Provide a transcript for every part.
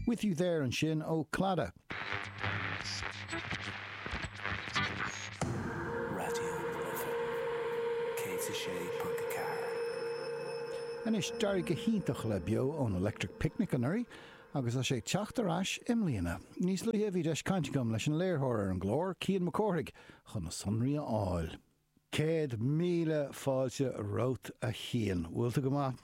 With You There ansin ó Clannad. Raidió na Life 106.4. Anois d'éirigh go hiontach le Beo ón Electric Picnic anuraidh agus tá sé ag teacht ar ais i mbliana. Níos luaithe bhí deis cainte agam leis an léirtheoir ar an gclár, Cian Mac Cárthaigh, chun na sonraí a fháil. Céad míle fáilte romhat a Chian. Bhfuil tú go maith?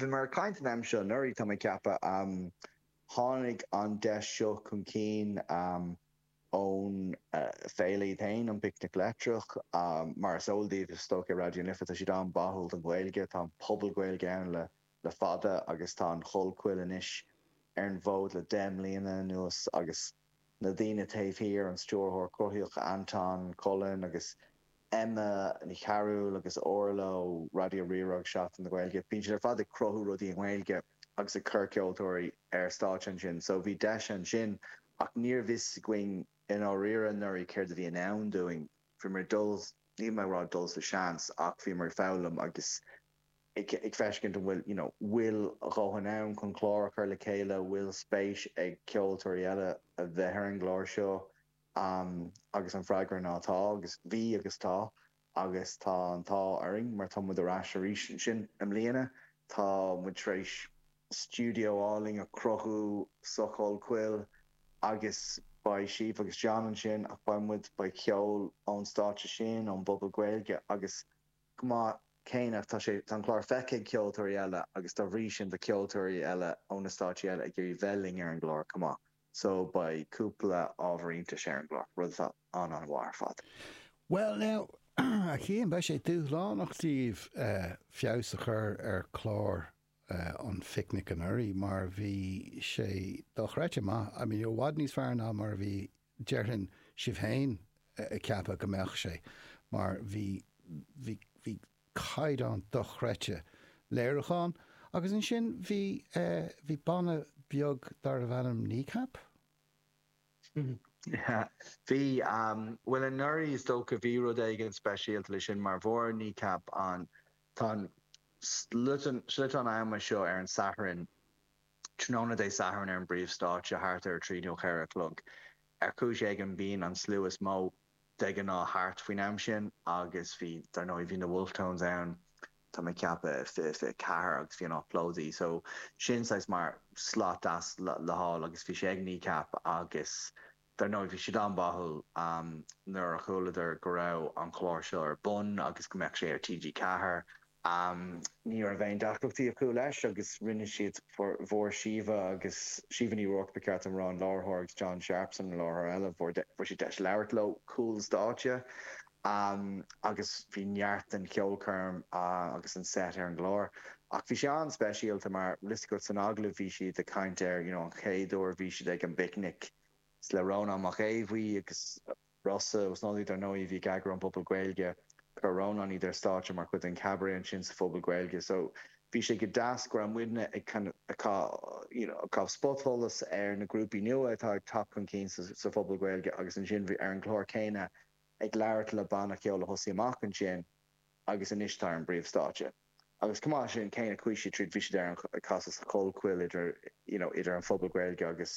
Bhí muid ag caint an am seo anuraidh, tá mé ag ceapadh. Tháinig an deis seo chun cinn ón bhféile iad féin, an Picnic Leictreach. Mar is eol daoibh, is dócha, ar Raidió na Life, tá siad an-bháúil don Ghaeilge. Tá an Puball Gaeilge ann le fada agus tá an Chollchoill anois ar an bhfód le deich mbliana anuas agus, na daoine taobh thiar, an stiúrthóir cruthaitheach Anton Cullen agus Emma Ní Chearúil agus Orla ó Raidió Rí-Rá agus Seachtain na Gaeilge. Bíonn siad ar fad ag cruthú rudaí i nGaeilge agus ag cur ceoltóirí ar stáitse ansin, so bhí deis ansin ach ní raibh a fhios againn i ndáiríre anuraidh céard a bhí i ndán dúinn. Bhíomar ag dul, níl mé ag rá ag dul sa seans, ach bhíomar ag foghlaim agus ag feiceáil an bhfuil, you know, bhfuil a dhóthain ann chun clár a chur le chéile, bhfuil spéis ag ceoltóirí eile a bheith ar an gclár seo agus an freagra ná tá agus bhí agus tá agus tá an t-ádh orainn mar tá muid ar ais arís ansin i mbliana, tá muid tar éis stiúideo álainn a chruthú sa Chollchoill agus beidh Síomha agus John ansin ach beidh muid, beidh ceol ón stáitse sin, ón bPuball Gaeilge agus. chomh maith céanna ach tá sé, tá an clár feicthe ag ceoltóirí eile agus dá bhrí sin tá ceoltóirí eile ó na stáitsí eile ag iarraidh bheith linn ar an gclár chomh maith so beidh cúpla ábhar iontais ar an gclár, rud atá an-an-mhaith ar fad. Bhuel now, a Chiain, beidh sé dúshlánach daoibh feabhas a chur ar chlár an Phicnic anuraidh mar bhí sé dochreidte maith, I mean i bhfad níos fearr ná mar a bhí Déarfainn, sibh féin ag ceapadh go mbeadh sé, mar bhí, bhí, bhí caighdeán dochreidte léiriúcháin agus ansin bhí eh, bhí banna beag darbh ainm Kneecap? Yeah, bhí, bhuel anuraidh is dócha bhí rud éigin speisialta leis sin mar fuair Kneecap an, tá an sliotán, sliotán ama seo ar an Satharn, Tráthnóna Dé Sathairn ar an bpríomhstáitse, thart ar a trí nó a ceathair a chlog, ar chúis éigin bíonn an slua is mó de ghnáth thart faoin am sin agus bhí, dar ndóigh, bhí na Wolfe Tones ann, tá mé ag ceapadh, i 2024 agus bhí an áit plódaithe. So, sin saghas mar slot deas le fáil agus bhí sé ag Kneecap agus. Dar ndóigh, bhí siad an-bháúil nuair a chualadar go raibh an clár seo ar bun agus go mbeadh sé ar TG4. Ní raibh aon deacrachtaí acu leis agus rinne siad, fuair Síomha agus Síomha Ní Ruairc, ba cheart dom a rá, an láithreoir, agus John Sharpson, an láithreoir eile, fuair siad deis labhairt leo cúl stáitse. Am agus bhí neart den cheolchoirm agus an set ar an gclár. Ach bhí sé an-speisialta mar, tá a fhios agat san agallamh, bhí siad ag caint ar you know an chéad uair a bhí siad ag an bPicnic le Rónán Mac Aodh Bhuí agus Rossa, dar ndóigh, a bhí ag eagrú an Phubaill Gaeilge. Chuir Rónán iad ar stáitse mar chuid den Chabaret ansin sa Phuball Gaeilge. So bhí sé go deas go raibh muidne ag kind of caitheamh you know caitheamh spotsholas ar na grúpaí nua atá ag teacht chun cinn sa Phuball Gaeilge agus ansin bhí ar an gclár céanna ag labhairt le banna ceoil a thosaigh amach ansin agus anois atá ar an bpríomhstáitse. Agus chomh maith leis sin, go ndeachaigh siad tríd, bhí siad ar an, ag casadh sa chollchoill idir, you know, idir an Puball Gaeilge agus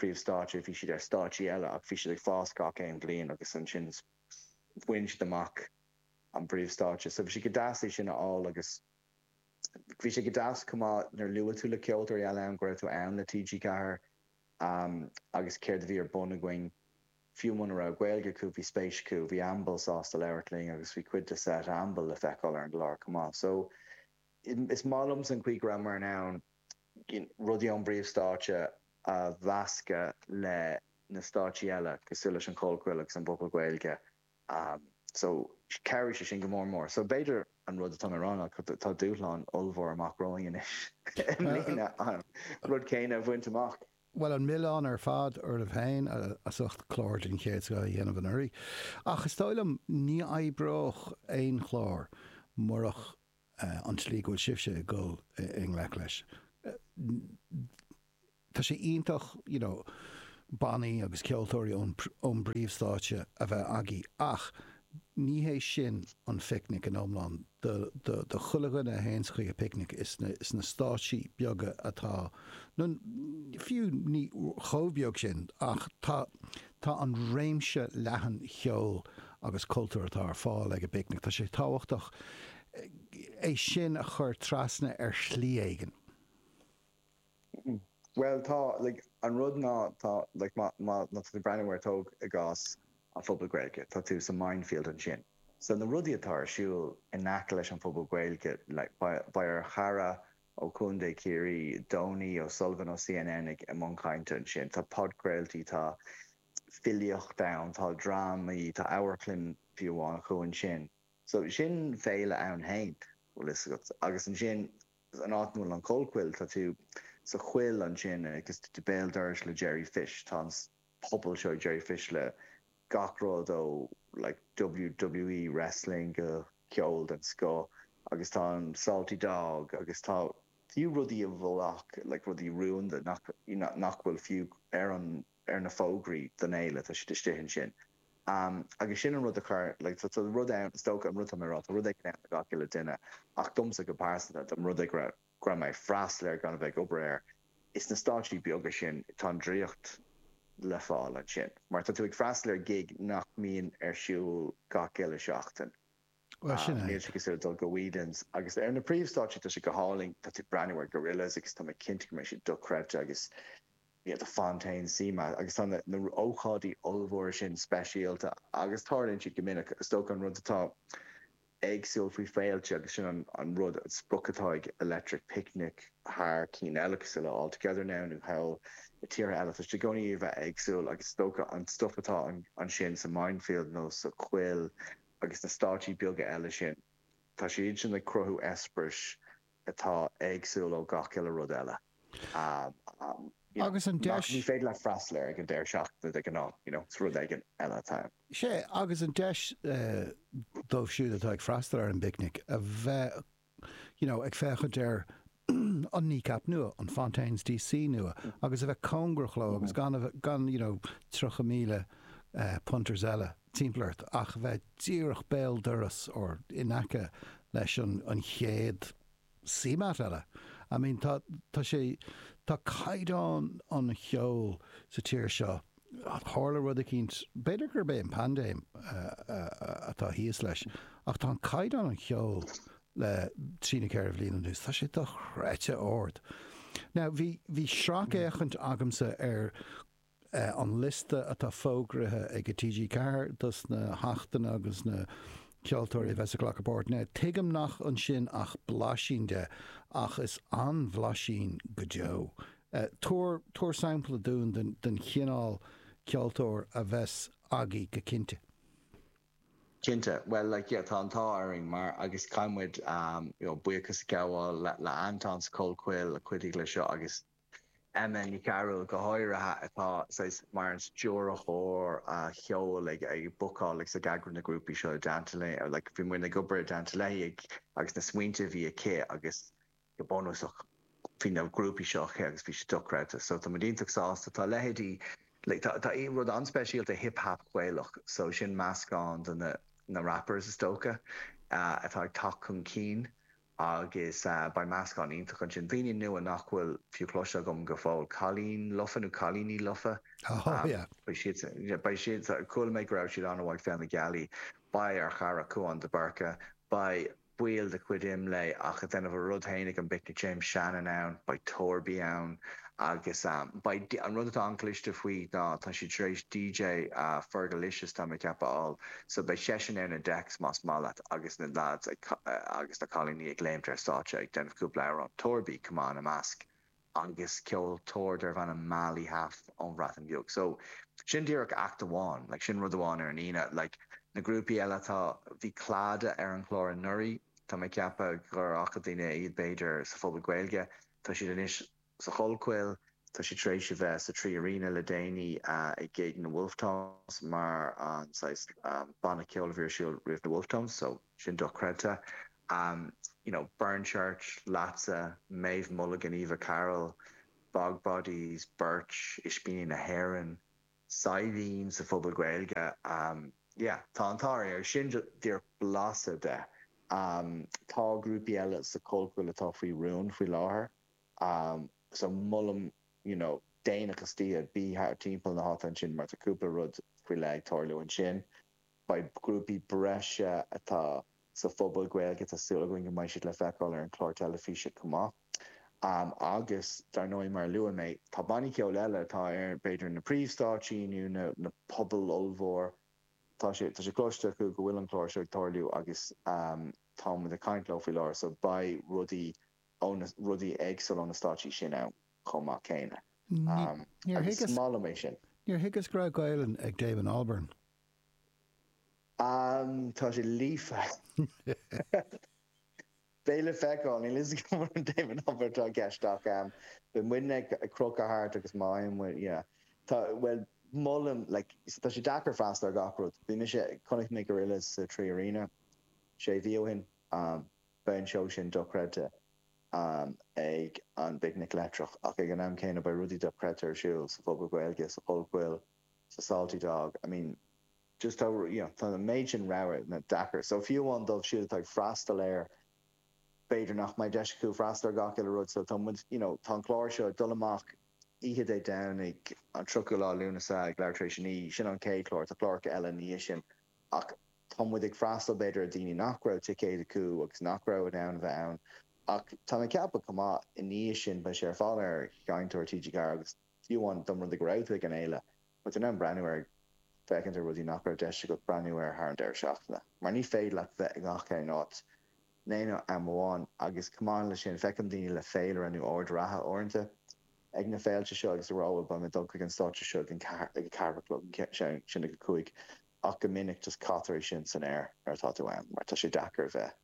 príomhstáitse, bhí siad ar stáitsí eile ach bhí siad ag fás gach aon bhliain agus ansin bhain siad amach an bpríomhstáitse. So bhí sé go deas é sin a fháil agus bhí sé go deas chomh maith nuair a luaigh tú le ceoltóirí eile ann go raibh tú ann le TG4 agus céard a bhí ar bun againn. Fiú muna raibh Gaeilge acu, bhí spéis acu, bhí Amble sásta labhairt linn agus bhí cuid de set Amble le feiceáil ar an gclár chomh maith. So, is maith liomsa an chaoi go rabhamar in ann rudaí ón bpríomhstáitse a mheascadh le na stáitsí eile cosúil leis an gCollchoill agus an bPuball Gaeilge Am, so, chabhraigh sé sin go mór. So, b'fhéidir, an rud atá mé a rá ná, tá dúshlán ollmhór amach romhainn anois i mbliana an rud céanna a bhaint amach. Bhuel, an milleán ar fad oraibh féin as ucht clár den chéad scoth a dhéanamh anuraidh. Ach is dóigh liom, ní oibreodh aon chlár murach an tslí go bhfuil sibhse ag dul i ngleic leis. Tá sé iontach you know bannaí agus ceoltóirí ón bpríomhstáitse a bheith agaibh ach ní hé sin an Picnic in iomlán. Do chuile dhuine a théanns chuig an bpicnic, is na stáitsí beaga atá, nó fiú ní chomh beag sin, ach tá, Tá an réimse leathan cheoil agus cultúir atá ar fáil ag an bPicnic, tá sé tábhachtach é sin a chur trasna ar shlí éigin. Bhuel, tá, like, an rud ná, tá, like, má, má, má tá tú ag breathnú air, tóg i gcás an Puball Gaeilge, tá tú sa Mindfield ansin. So na rudaí atá ar siúl in aice leis an bPuball Gaeilge, like, beidh, beidh ár gcara ó Chontae Chiarraí, Donie O Sullivan ó CNN i mbun cainte ansin. Tá podchraoltaí, tá filíocht ann, tá drámaí, tá amharclann fiú amháin acu ansin. So sin féile ann féin, bhfuil fhios agat. Agus ansin an áit an bhfuil an Chollchoill, tá tú sa choill ansin agus tú béal dorais le Jerry Fish. Tá an. pobal seo Jerry Fish le gach rud ó like WWE wrestling go ceol den scoth agus tá an Salty Dog agus tá fiú rudaí a bhfuil like rudaí rúnda nach you know nach bhfuil fiú ar an ar na fógraí don fhéile tá siad istigh ansin um agus sin an rud a chur like tá tá rud ann is dócha an rud atá mé a rá tá rud éigin ann do gach uile duine ach domsa go pearsanta tá rud ag raibh go raibh mé ag freastal air gan a bheith ag obair air, is na stáitsí beaga sin tá an draíocht le fáil, ansin mar tá tú ag freastal ar ghig nach mbíonn ar siúl gach uile seachtain. Níl sé cosúil le dul go Whelan's. Agus ar na príomhstáitsí tá sé go hálainn, tá tú ag breathnú ar Gorillaz agus tá mé cinnte go mbeidh siad dochreidte agus you know Fontaines, CMAT agus tá na na ócáidí ollmhóra sin speisialta agus tarlaíonn siad go minic, is dócha an rud atá éagsúil faoi féilte agus sin an an rud an sprioc atá ag leithéidí Electric Picnic thar cinn eile cosúil le All Together Now nó thall i tíortha eile. Tá siad i gcónaí ag iarraidh a bheith éagsúil agus is dócha an stuif atá an ansin sa Mindfield nó sa Chollchoill agus na stáitsí beaga eile sin tá siad sin ag cruthú eispéiris atá éagsúil ó gach uile rud eile you know agus ní féidir leat freastal air ag an deireadh seachtaine de ghnáth you know is rud éigin eile atá ann. Sea, agus an deis dóibh siúd atá ag freastal ar an bPicnic a bheith you know ag féachaint ar an Kneecap nua, an Fontaines D.C. nua agus a bheith cóngarach leo agus gan a bheith, gan you know tríocha míle punters eile. timpeall ort ach bheith díreach béal doras or in aice leis an an chéad CMAT eile. I mean tá tá sé tá caighdeán an cheoil sa tír seo tharla rud eicínt b'fhéidir gurb é an paindéim atá thíos leis ach tá an caighdeán an cheoil le trí nó ceithre bhliain anuas tá sé dochreidte ard. Now bhí bhí sracfhéachaint agamsa ar an liosta atá fógraithe ag TG4 dos na hachtanna agus na ceoltóirí a bheas ag glacadh páirt ann. Tuigim nach bhfuil ansin ach blaisín de, ach is an-bhlaisín go deo. Tabhair, tabhair sampla dúinn den, den chineál ceoltóir a bheas agaibh go cinnte. Cinnte, bhuel, like, yeah, tá an t-ádh orainn mar, agus caithfidh muid, you know, buíochas a ghabháil le Antoin sa Chollchoill a chuidigh le seo agus Emma Ní Chearúil go háirithe, atá saghas mar an stiúrthóir cheoil ag bookáil agus ag eagrú na grúpaí seo i dteannta léi, nó like bhí muid ag obair i dteannta léi agus na smaointe a bhí aici agus go bunúsach bhí na grúpaí seo aici agus bhí siad dochreidte so tá muid iontach sásta. Tá leithéidí like tá tá rud an-speisialta Hip Hop Gaelach so sin meascán de na na rappers is dócha atá ag teacht chun cinn Agus beidh meascán iontach ansin, daoine nua nach bhfuil fiú cloiste agam go fóill, cailín lofa nó cailíní lofa, beidh siad, beidh siad, chuala mé go raibh siad an-mhaith ag Féile na Gealaí, beidh ar chara Cúán de Búrca, beidh ball de chuid Imlé ach a' déanamh a rud fhéin ag an bPicnic James Shannon ann, beidh Torby ann agus beidh, an rud atá an-chliste faoi ná tá siad tar éis DJ Fergalicious, tá mé ag ceapadh, a fháil. So beidh seisean ar na decks más maith leat agus na lads agus na cailíní ag léimt ar stáitse ag déanamh cúpla amhrán, Torby chomh maith ina measc, agus ceoltóir darb ainm Mali Haf ón Bhreatain Bheag. So sin díreach act amháin, like sin rud amháin ar an Aoine. Like na grúpaí eile, tá, bhí Clada ar an chlár anuraidh, tá mé ag ceapadh gur fhaca daoine iad b'fhéidir sa Phuball Gaeilge, tá siad anois, Sa Chollchoill, tá siad tar éis a bheith sa Three Arena le déanaí ag gig na Wolfe Tones mar an saghas banna ceoil a bhí ar siúl roimh na Wolfe Tones so sin dochreidte. You know, Burnchurch, Leatsa, Méabh Mulligan, Eva Carroll, Bog Bodies, Birch, Ispíní na hÉireann, Saidhbhín sa Phuball Gaeilge, yeah, tá an t-ádh orthu. Sin díreach blaiseadh de. Tá grúpaí eile sa Chollchoill atá faoi rún faoi láthair. Am so molaim you know déanach istoíche, bí thart timpeall na háite ansin mar tá cúpla rud faoi leith ag tarlú ansin. Beidh grúpaí breise atá sa Phuball Gaeilge, tá súil againn go mbeidh siad le feiceáil ar an chlár teilifíse chomh maith. Am agus dar ndóigh mar a luaigh mé, tá bannaí ceoil eile atá ar b'fhéidir na príomhstáitsí nó na na pubaill ollmhór, tá sé tá sé cloiste acu go bhfuil an clár seo ag tarlú agus am táimid ag caint leo faoi láthair so beidh rudaí ó na rudaí éagsúla, ó na stáitsí sin ann chomh maith céanna. Agus is maith liom é sin. Níor thuigeas go raibh Gaelainn ag Damon Albarn. Tá sé líofa. Beidh le feiceáil. Níl a fhios agam an Damon Albarn atá i gceist ach beidh muidne ag crochadh thart agus má fhaigheann muid, yeah. Tá, bhuel, molaim, like, you see, tá sé deacair freastal ar gach rud. Bhí mise, chonaic mé Gorillaz sa Three Arena sé mhí ó shin. Beidh an seó sin dochreidte ann ag an bPicnic Leictreach, ach ag an am céanna beidh rudaí dochreidte ar siúl sa Phuball Gaeilge, sa Chollchoill, sa Salty Dog, I mean just tá, you know, tá an méid sin rogha ann, tá sé deacair. So fiú amháin dóibh siúd atá ag freastal air, b'fhéidir nach mbeidh deis acu freastal ar gach uile rud, so tá muid, you know, tá an clár seo ag dul amach oíche Dé Domhnaigh an 30ú lá Lúnasa ag leathuair tar éis a naoi, sin an chéad chlár, tá cláracha eile ina dhiaidh sin Ach tá muid ag freastal, b'fhéidir, ar dhaoine nach raibh ticéid acu agus nach raibh in ann a bheith ann. Ach tá mé ag ceapadh chomh maith, i ndiaidh sin, beidh sé ar fáil ar Sheinnteoir TG4 agus fiú amháin dá mba rud é go raibh tú ag an fhéile, beidh tú in ann breathnú air, féachaint ar rudaí nach raibh deis agat breathnú air thar an deireadh seachtaine. Mar ní féidir leat bheith i ngach aon áit in aon am amháin. Agus chomh maith leis sin, feiceann daoine le féilire nó aird reatha uaireanta. ag na féilte seo agus bhuel beidh mé ag dul chuig an stáitse seo ag an ag a ceathair a chlog an ceann sin ag a cúig ach go minic just caitear é sin san aer nuair atá tú ann mar tá sé deacair a bheith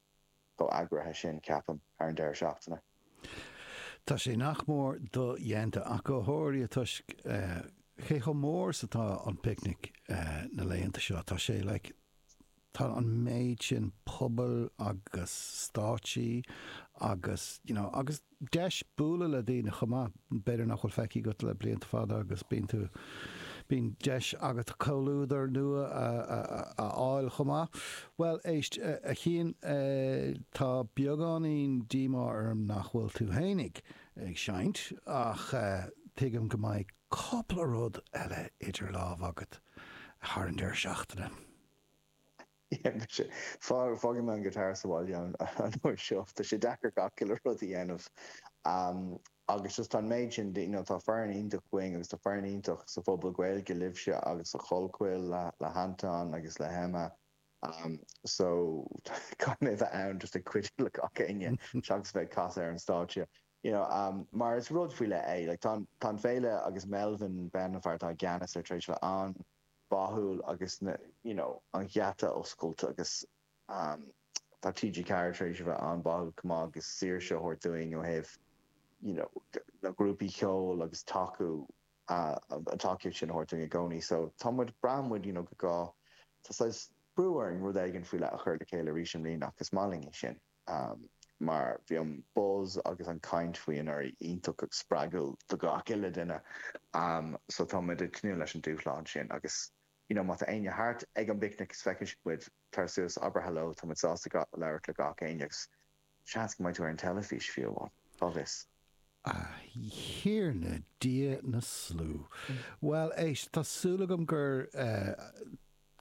chomh eagraithe sin ceapaim thar an deireadh seachtaine. Tá sé nach mór do-dhéanta ach go háirithe toisc cé chomh mór is atá an picnic na laethanta seo tá sé like Tá an méid sin pobail agus stáitsí agus, you know, agus deis bualadh le daoine chomh maith, b'fhéidir nach bhfuil feicthe agat le blianta fada agus bíonn tú, bíonn deis agat comhluadar nua a fháil chomh maith. Bhuel, éist, a Chiain, tá beagáinín díomá orm nach bhfuil tú fhéinig ag seinnt ach tuigim go mbeidh cúpla rud eile idir lámha agat thar an deireadh seachtaine. Fágfaidh mé an guitar sa bhaile an uair seo. Tá sé deacair gach uile rud a dhéanamh agus just tá an méid sin de, you know, tá foireann iontach againn agus tá foireann iontach sa phuball Gaeilge libhse agus sa Chollchoill le hAnton agus le hEmma so caithfidh mé bheith ann just ag cuidiú le gach éinne seachas bheith ag casadh ar an stáitse, you know, mar is rud faoi leith é. Like, tá an, tá an féile agus Melvin Benn, an fear atá i gceannas air tar éis bheith ann. báúil agus an you know an geata oscailte agus ehm tá TG4 tar éis a bheith an-báúil chomh maith agus saoirse a thabhairt dúinn ó thaobh you know na grúpaí cheoil agus tacú ah an tacaíocht sin a thabhairt dúinn i gcónaí so tá muid braitheann muid you know go gá go tá saghas brú orainn rud éigin faoi leith a chur le chéile arís i mbliana ach is maith linn é sin. Ámh, mar bhí an buzz agus an chaint faoi anuraidh iontach spreagúil do gach uile duine, ámh, so tá muid ag tnúth leis an dúshlán sin agus, you know, má tá éinne thart ag an bPicnic is feiceann siad muid, tar suas, abair hello, tá muid sásta labhairt le gach éinne agus seans go mbeidh tú ar an teilifís, fiú amháin, cá bhfios? A Thiarna Dia na Slua! Bhuel, éist, tá súil agam gur, eh,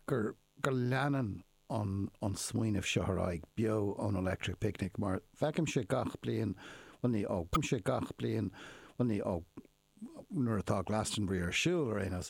gur, gur leanann an smaoineamh seo ar aghaidh beo ón Electric Picnic mar feicimse gach bliain, bhuel ní ó, feicimse gach bliain, bhuel ní ó, nuair atá Glastonbury ar siúl ar aon nós.